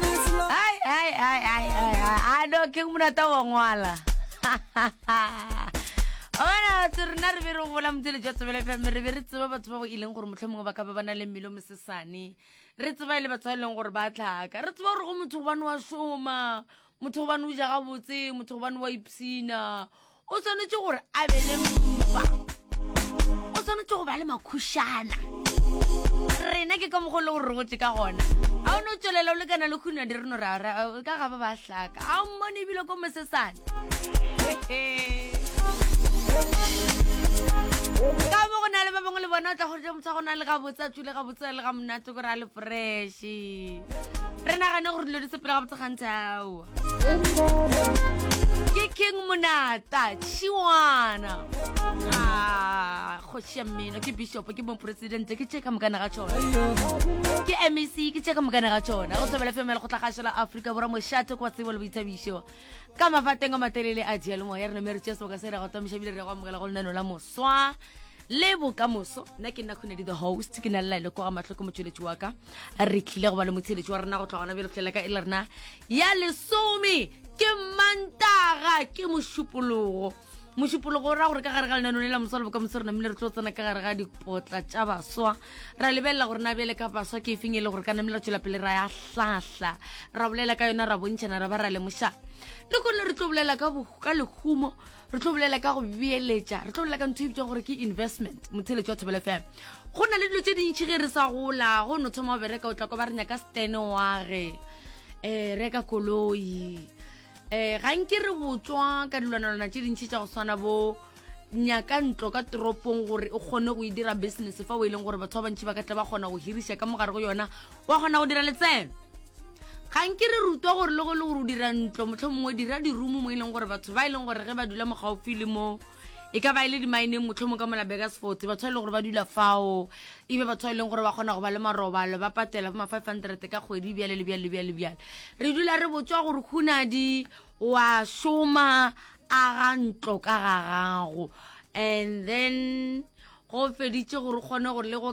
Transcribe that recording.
Ai, ai, ai, ai, ai, ai. a no ke monata wa ngwala ona se rena re be re gola motsele jwa tsebele fm re be re tseba batho ba go ileng gore motlho mongwe ba ka be ba na le mmele o mosesane re tseba e le batho ba e leng gore ba tlhaka re tseba gore go motho gobane wa šoma motho gobane o ja gabotse motho gobane wa ipshina o tshwanetse gore a be le mpa o tshwanetse go ba le makhušana rena ke ka mokgwa le gore re gotse ka gona ga o ne o tswelela o lekana le khuna di reno ra ka ga ba ba hlaka ga o mmone ebile ko mosesane ka mo go na le ba bangwe le bona o tla goja motho go na le gabotse a tswile gabotse le ga monate gore a le freshe re nagane gore dilo di sepela gabotse gantsi ao ke keng monata šiwana ah, kgoši ya mmino ke bishopo ke mopresidente ke tše ka mokana ga tšona ke mec ke tše ka mokana ga tšona go thobela femela go tlhagašo la aforika borwa mošate kwa tsebo le boithabišo ka mafateng a matelele a dialomo ya rena me re tšea seboka se re go tomiša bile re go amogela go lenano la moswa le bokamoso nna ke nna kgone di the host ke na le laele kwa ga matlhoko motsweletši wa ka re tlile go ba le motheletši wa rena go tloga gona bjale go fihlela ka e le rena ya lesome ke mantaga ke mošupologo mošupologo o ra gore ka gare ga lenanone la moswa le bokamoso rena mmile re tlo tsena ka gare ga dipotla tša baswa ra lebelela gore na bjale ka baswa ke efeng e le gore ka namele re tswela pele ra ya hlahla ra bolela ka yona ra bontšhana ra ba ra lemoša le kone re tlo bolela ka lehumo re tlo bolela ka go beeletša re tlo bolela ka ntho e bitsang gore ke investment motheletso wa thobelo fela go na le dilo tse dintšhi ge re sa gola go no thoma o bereka o tlako ba re nyaka stene wage um eh, reka koloi um eh, ga nke re botswa ka dilwanalwana tse dintšhi tsa go tshwana bo nyaka ntlo ka toropong gore o kgone go e dira business fa o e leng gore batho ba bantšhi ba ka tla ba kgona go hirisa ka mogare go yona wa kgona go dira letseno ga nke re rutwa gore le go le gore o dira ntlo motlho mongwe dira dirumo mo e leng gore batho ba e leng gore ge ba dula mogaufi le mo e ka ba e le dimaeneng motlho mongwe ka mola begasfort batho ba e leng gore ba dula fao ebe batho ba e leng gore ba kgona go ba le marobalo ba patela bo ma-five hundred ka kgwedi bjale le bjale le bjale le bjale re dula re botswa gore khunadi wa šoma a ga ntlo ka ga gago and then go feditše gore kgone gore le go